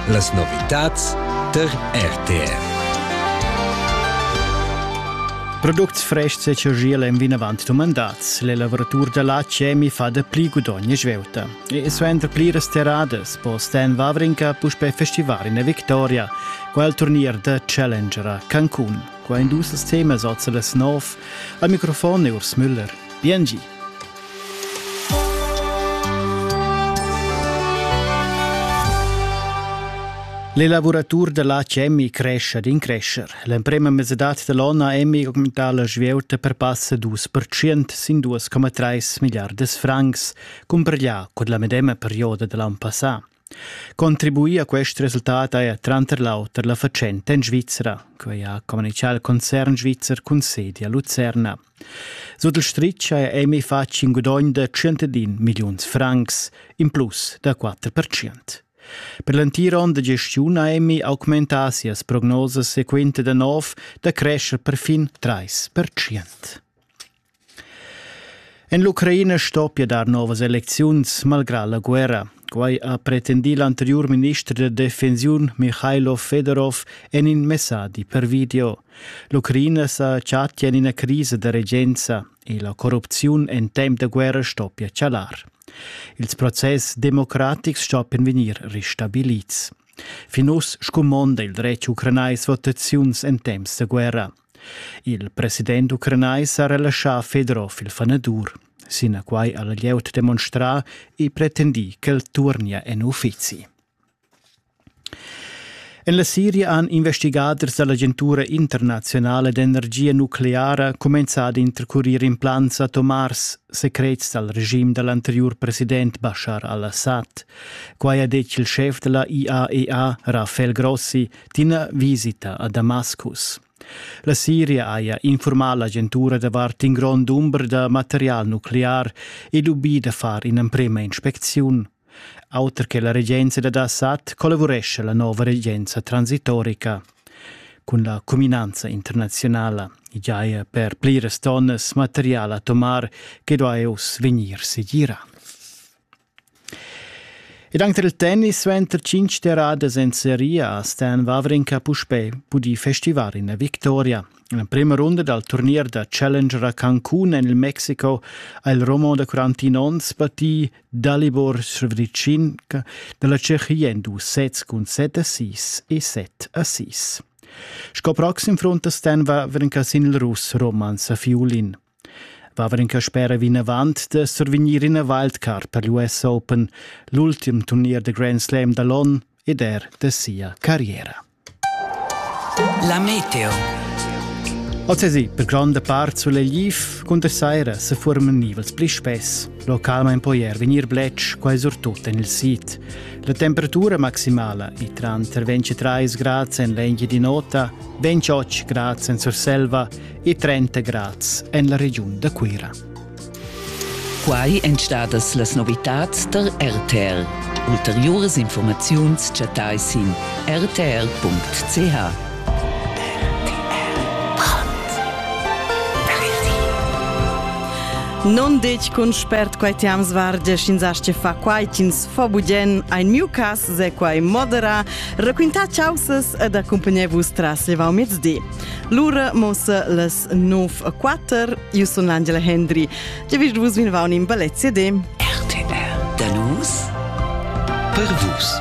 Las novitads tar RTR. Products frestgs e chaschiel èn vinavant dumandads. L'elavuratur da la Cemi fa da pli gudogn e svelta. E suenter pliras terradas po Stan Wawrinka puspè festivar ina victoria. Quel turnier da Challenger a Cancun. Qua in dus temas oz las nov. Al microfon è Urs Müller. Bien gi. L'elavuratur da latg Emmi crescha d'in crescher. L'emprema mesadad dall'onna Emmi augmenta la svieuta per passa dus per cient sin 2,3 milliardas francs, cumparglià cun la medema perioda dall'ann passà. Contribuir a quest resultat haja tranter l'auter la fatschenta en Svizra, quai ha communitgà il concern svizzer cun sedi a Lucerna. Sut il stritg haja Emi fatg in gudogn da 101 milliuns francs, in plus da 4%. Per l'entir onn da gestiun ha Emi augmentà sias prognosas sequenta da nov da crescher perfin 3%. En l'Ucraina stoppia dar novas elecziuns malgrà la guerra. Quai ha pretendì l'anteriur minister da defensiun Mihailo Fedorov en in messadi per video. L'Ucraina sa chattia en ina crisa da regenza e la corrupziun en temp da guerra stoppia chalar. Ils process democratics stoppian vegnir ristabilids. Fin uss scumonda il dretg ucranais votaziuns en temps da guerra. Il president ucranais ha relaschà Fedorov il fanadur. Sinaquai ha la glieud demonstrà e pretendì ch'el turnia en uffizi. En la Siria han investigaders da l'agentura internaziunala d'energia nucleara cumenzà ad intercurir implants atomars secrets dal regim da l'anteriur president Bashar al-Assad. Quai ha detg il schef da la IAEA, Rafael Grossi, d'ina visita a Damascus. La Siria haja infurmà l'agentura davart in grond dumber da material nuclear ed ubì da far in'emprema inspecziun. Auter che la regenza dad Assad collavurescha la nova regenza transitorica. Cun la cuminanza internazionala giaja per pliras tonnas material atomar che duai uss vegnir segirà. Ed anche il tennis suenter tschintg terradas en seria a Stan Wawrinka puspè pudì festivar ina victoria. En la prima runda dal turnier da Challenger a Cancun en il Mexiko ha il Romo da 41 onns battì Dalibor Srebricin da la Tschechia en dus sets cun 7 a 6 e 7 a 6. Sco proxim fronta Stan Wawrinka sin il russ Roman Safiulin. Vavan in Caspera vinavant da survegnir ina wildcard per l'US Open, l'ultim turnier da Grand Slam da l'onn ed er da sia carriera. La meteo. Oz è per gronda part sulegliv cunter saira se forman nivels pli spess. Localment poi er vegnir bletsch, quai surtut en il sid. La temperatura maximala è tranter 23 grad en l'engia di nota, 28 grad en Surselva e 30 grads en la regiun da Cuira. Quai èn stadas las novitads tar RTR. Ulteriuras informaziuns chattai sin rtr.ch. Non detg cun spert quai ti am svarge sch'ins asce fa quai ch'ins fa bugen ein miu cas se quai modera raquinta chausas ed accompagné vus tras levau mezdi Lura mossa las 9.4. Io sun l'Angela Hendry. Già vis vus vinvaun in ballet CD. RTR. Da nus per vus.